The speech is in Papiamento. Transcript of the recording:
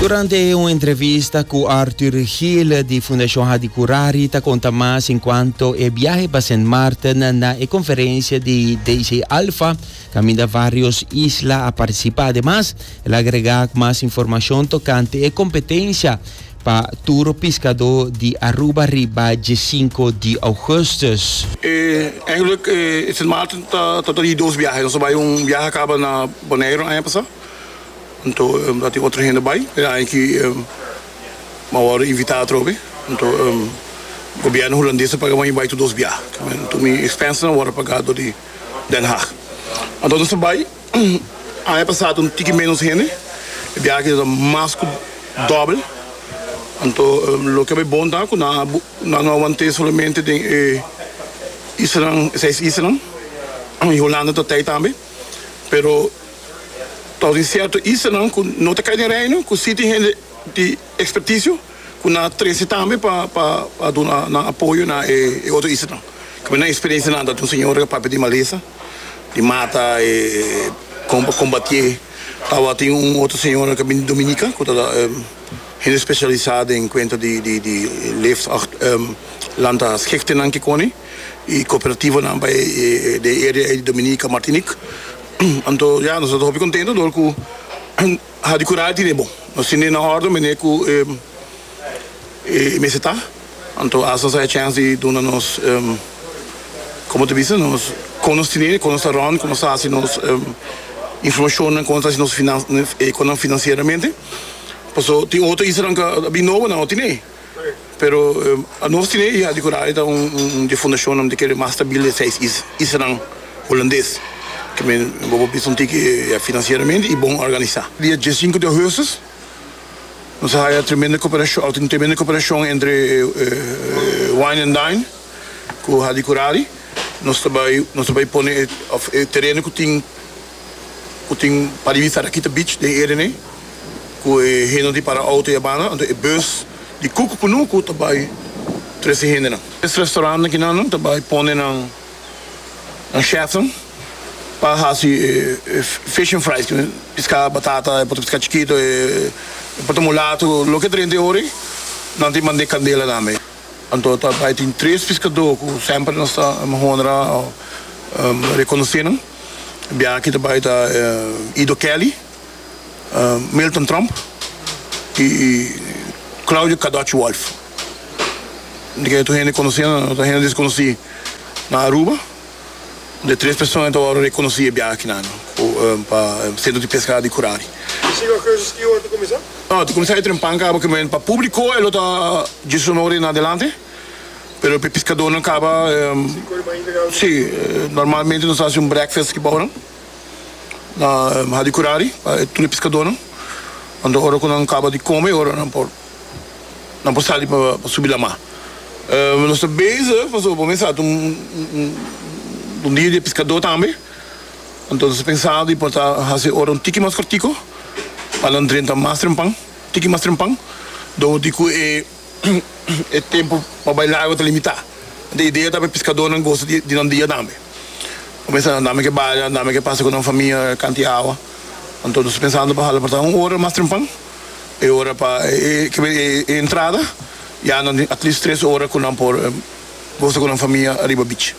Durante un entrevista cu Arthur Gil di Fundacion Hadi Curari ta conta mas en cuanto e biahe pa Sint Maarten na e conferencia di DJ Alfa caminda varios isla a participa. Ademas el a agrega mas informacion tocante e competencia Pa turo piskadó di Aruba riba dje sinku di ougùstùs. E ègèlèk e Sint Maarten ta ta di dos biahe. Nos a bai un biahe a kaba na Boneiru aña pasá. Anto ta tin otro hende bai. E aña aki bo a wòrdu invitá atrobe. Anto gobièrnu hulandes a paga bo mi bai tur dos biahe. Tur mi expenses a wòrdu pagá dor di Den Haag. Anto nos a bai. Aña pasado un tiki ménos hende, e biaha keda ta mas ku dòbel. Anto loke bai bon ta ku nan a nan no a want'é solamente den e islanan, e seis islanan, i Holanda ta t'ei tambe. Pero ta tin sierto islanan ku no ta kai den Reino ku si tin hende di ekspertisio. ku nan a trese tambe pa pa pa duna nan apoyo na e e otro islanan. Kamba na e eksperensia nan ta tin un señor ku a papia di malesa i mata e kon pa kombatié. Tabatin un otro señora ku a bini di Dominika ku ta hende spesialisá den kuenta di di di leeft ach lanta schechtenan kikoni i kooperativanan pa e den e area ei di Dominika, Martinik. Anto ya nos ta hopi kontento dor ku. Ha di cura di Nemo. Nos tin di na orden mene cu e mester ta. Anto asta nos a haci chance di duna nos, como ta bisa, nos con nos tene, con nos ta rond, con nos ta haci nos informacionnan, con nos ta haci nos finan, e conan financieramente. Paso tin otro isanan cu a bin nobo nan no tene. Pero nos tin e hija di Curayo e ta un dje fundacionnan di kere mas stabil di e seis islanan Hulandes, ke mi bo por bisa un tiki ya financieramente y bon organisa. Dia dje sinku di Augustus nos a haya tremendo cooperacion, a tin tremendo cooperacion entre Wine and Dine cu Hadi Curari, nos ta bay nos ta bay pone e tereno cu tin, ku tin pa di bista Rakita Beach den Edene ku e hende di para outo i a banda anto e bus di Cook Punuku ta bai tres e hendenan. Es restaurant akinan nan ta bai pone nan chefnan pa hasi e fish and fries ku piska batata e por ta piska chikito e por ta mulatu loke drenta e ora ei nan tin band'e candela tambe. Anto ta bay tin tres piskadó ku semper nos ta honra o rekonosé nan. Biaha-aki ta bay ta Ido Kelly, Milton Tromp i Claudio Kadoch Wolf. Di ke tur hende konosé nan, tur hende deskonosí na Aruba. de tres persona ta wòrdu rekonosí e biaha akinan pa Sentro di Pesca di Curari. I si lo cursus ki ora ta kuminsá? No, ta kuminsá e trempan kaba ku men. Pa públiko e lo ta djiesunore na adelante, pero pa e piskadónan kaba sí. Normalmente nos ta hasi un brekfest riba ora na Hadi Curari pa tur e piskadónan. Anto ora ku nan kaba di kome, e ora nan por. nan por sali pa subi lamá. Nos ta bezig pasobra bo mester a ta un un dia di e piskadó tambe. Anto nos a pensado di por ta hasi ora un tiki mas kortiko pa nan drenta mas trempan, tiki mas trempan, dor di ku e e tempu pa bai largo ta limitá. Enton e idea ta pa e piskadónan gosa di di nan dia tambe. Bo mester a andá me ke bada, andá me ke pasa ku nan famia kanti awa. Anto nos a pensado di por hala por ta un ora mas trempan. e ora pa e entrada ya nan tin at least tres ora cu nan por gosa cu nan famia riba beach.